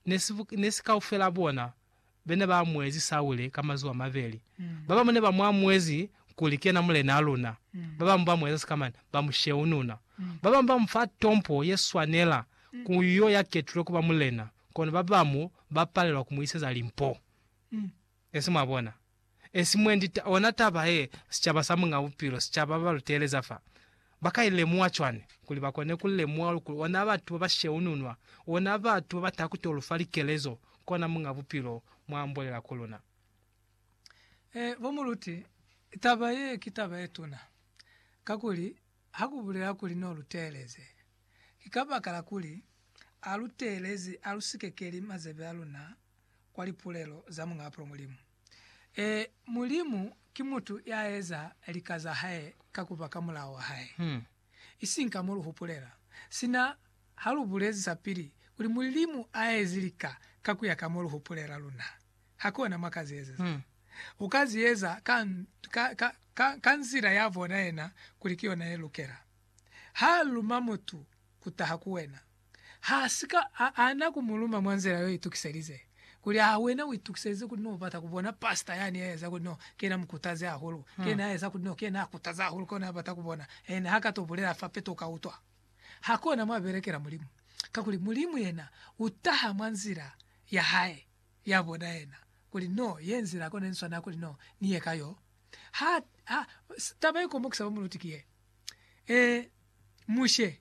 ne si kaufela bona bene ba amuezi Saule ka mazuba a mabeli. Ba bamu ne ba mu amuezi kuli ki yena mulenaa luna, ba bamu ba mu eza sikamani, ba mu sheununa. Ba bamu ba mu fa tompo ye swanela ku yo ya ketulwe ku ba mulena, kono ba bamu ba palelwa ku mu iseza limpo. Ne si mwa bona? Esi mwendi ta, ona taba ye, sicaba sa Muñ'a Bupilo, sicaba ba ba lu teeleza fa, ba ka i lemuha cwani? Kuli ba kone ku lemuha luli kuli ona batu ba ba sheununwa, ona batu ba ba taha ku t'o lu fa likelezo, kona Muñ'a Bupilo mwa ambolela ku luna. E, bo muluti, taba ye ki taba ye tuna, kakuli ha ku bulela kuli n'o lu teeleze, ki kabakala kuli a lu teelezi, a lu sikekeli mazebe a luna kwa lipulelo za Muñ'apulo Mulimu. Ee, Mulimu ki mutu ya eza lika za hae ka ku ba ka mulao wa hae, isiñi ka mo lu hupulela. Sina ha lu bulezi sapili kuli Mulimu a ezi lika ka ku ya ka mo lu hupulela, luna hakona mwa ka zi ezeza. U ka zi eza ka, ka, ka, ka, ka nzila ya bona yena kuli ki yona ye lukela. Ha luma mutu ku taha ku wena, Ha si ka a ana ku mu luma mwa nzila yo itukiselize. Kuli, Aa, wena u itukiselize kuli no bata ku bona pastor yani ya eza kuli no ki yena mukutazi hahulu, ki yena ya eza kuli no ki yena a kutaza hahulu, ki ona ya bata ku bona, and ha ka to bulela fa peto u ka utwa? Ha ki ona mwa belekela Mulimu. Kakuli, Mulimu yena u taha mwa nzila ya Hae, ya bona yena, kuli no ye nzila kona ni swanela kuli no ni ye ka yo. Ha, ha, taba ye komokisa ba mu luti ki ye, Ee, Mushe,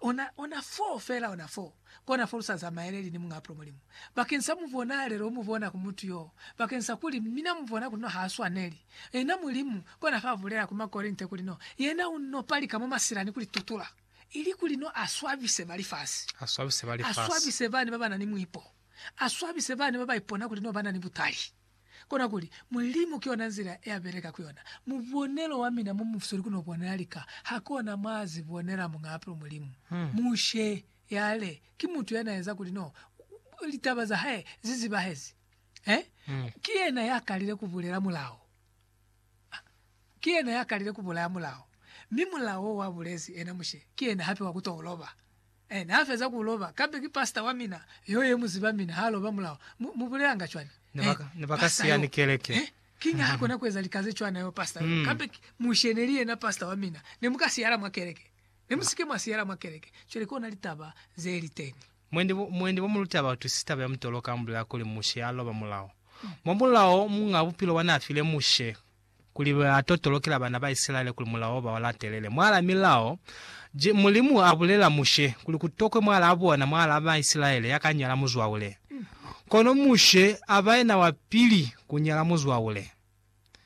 Ona, ona foo fela, ona foo, kona fo lu sa zamaeleli ni Muñaa Pulumu Mulimu, bakeng sa mubonaalelo o mubona ku mutu yoo, bakeng sa kuli mina mubona kuli no ha swaneli. Yena Mulimu, kona fa bulela ku Makorinte kuli no, Yena u no palika mwa masila ni ku li tutula, ili kuli no a swabise ba lifasi, a swabise ba lifasi, a swabise bani ba ba na ni muipo, a swabise bani ba ba ipona kuli no ba na ni butali. Kona kuli, Mulimu ki ona nzila ya beleka ku yona. Mubonelo wa mina mo musweli ku no bonela lika, ha kona mwa zi bonela mung'apelo Mulimu. Mushe yale ki mutu ya na eza kuli no litaba za hae zi zibahezi. Eh? Ki yena ya kalile ku bulela mulao. Ah, ki yena ya kalile ku bulaya mulao. Mi mulao wo wa bulezi ena Mushe, ki yena hape wa ku to loba. Ene ha feza ku loba, kambe ki pastor wa mina yo ye mu ziba mina ha loba mulao. Mu, mu bulelanga cwani? Eh, Ne ba ka siya ni keleke. Eh, kiñi ha kona ku eza lika ze cwana yo pastor yo? Kambe ki Mushe ne li yena pastor wa mina. Ne mu ka siyala mwa keleke. Ne mu si ke mwa siyala mwa keleke. Cwale ki ona litaba ze li teñi. Mwendi bo, mwendi bo mu luta batu si taba ya mutolo ka mu bulela kuli Mushe a loba mulao. Mwa mulao, Muñ'a Bupilo wa n'a file Mushe kuli ba totolokela bana ba Isilaele kuli mulao ba u latelele. Mwaala milao je, Mulimu a bulela Mushe kuli ku tokwe mwaalaa bona, mwaalaa ba Isilaele, ya ka nyala muzwaule. Kono Mushe a ba yena wa pili ku nyala muzwaule.